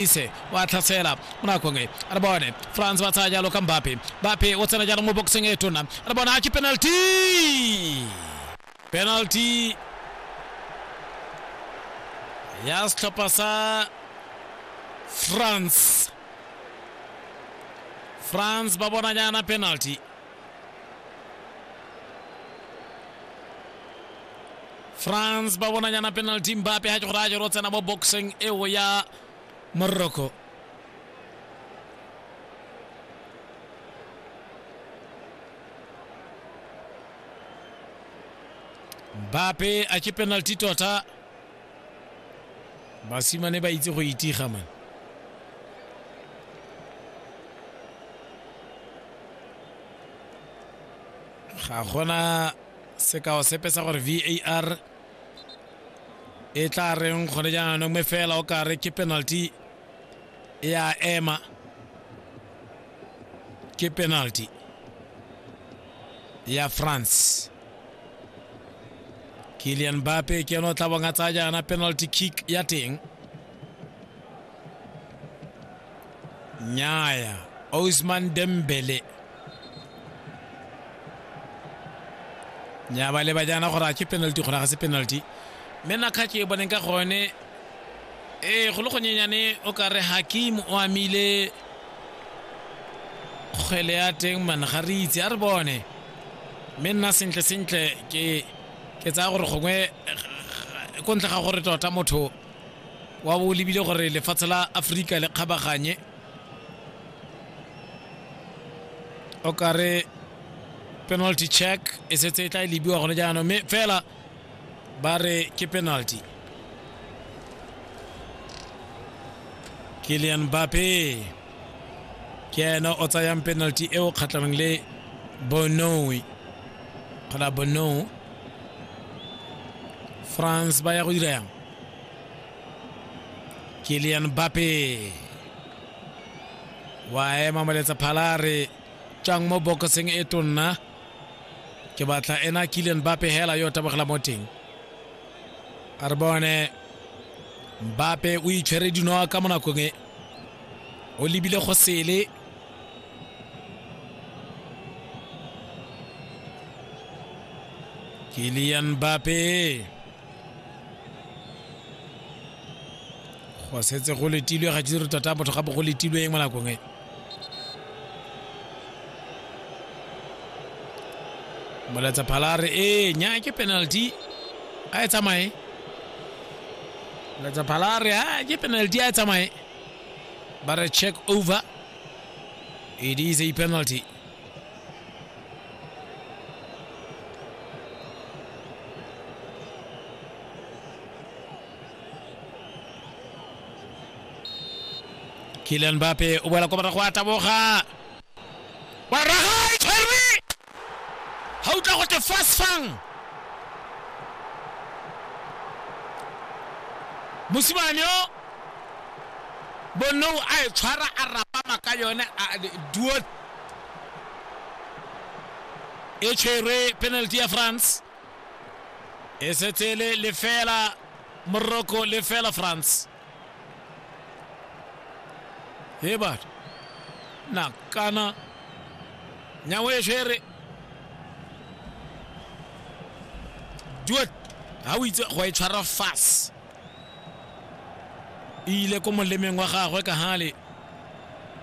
ise wa tlhasela mo nakong e re bone france ba tsaya jalo ka mbape mbape o tsena jaanong mo boxing e tona re bona a ke penalty penalty ya setlhopha sa france france ba bona jaana penalty france ba bonanyana penalty mbape ga ke gore a jero tsena mo boxing eo ya morocco mbape a ke penalty tota basimane ba itse go itiga mane ga gona sekao sepe sa gore var e tla reng gone jaanong mme fela o kare ke penalty e a ema ke penalty ya france kilian bape ke ene o tla bong a tsaya jaana penalty kick ya teng nyaya osman dembele nya ba leba jaana gore a ke penalty gore ga se penalty mme nakgatso e boneng ka gone ee go le gonyenyane o ka re hakim o amile kgwele ya teng mana ga re itse a re bone mme nna sentle sentle ke ke tsaya gore gongwe ko ntle ga gore tota motho wa bo lebile gore lefatshe la aforika le kgabaganye o kare penalty check e setse e tla e lebiwa gone jaanong mme fela ba re ke penalty kilian mbape ke ena o tsayang penalty eo kgatlhanong le bonoe kgona bonou france ba ya go dira yang kilian bape wa ema moletsa phala a re tswang mo bokoseng e tonna ke batla ena kilian bape hela yo tabogela mo teng a re bone mbape o itshwere dinoa ka mo nakong e o lebile go sele kilian mbape go setse go letilwe ga dire tota motho gape go letilwe eng mo nakong e moletsa phalare e nya ke penalty a e tsamaye moletsa phalare a ke penalty a e tsamaye ba re check over it is a penalty Kylian Mbappe o boela kwa morago a taboga wa raga e tshwerwe ga utlwa go te fast fang mosimane yo Bonou a e tshwara a rapama ka yone Duot e tshwerwe penalty ya France e setse le lefela Morocco lefela France e batho nakana nyawo e tshwere Duot ha o itse go e tshwara fast e ile ko molemeng wa gagwe ka gale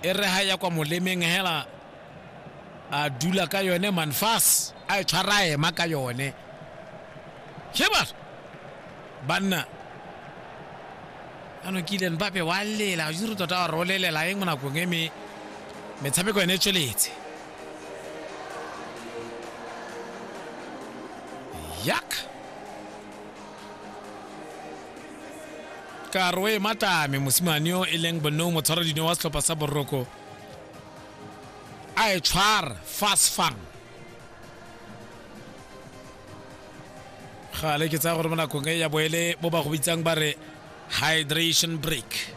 e re ga ya kwa molemeng hela a dula ka yone manfas a e tshwara ema ka yone sheba banna ano kile mbape wa lela juru tota wa rolelela eng mo nakong e me metshameko ene e tsweletse yak karoe matame mosimane yo e leng bonou motshwara dino wa setlhopha sa boroko a e tshwara fast fang gale ke tsaya gore mo nakong e ya boele mo ba go bitsang ba re hydration break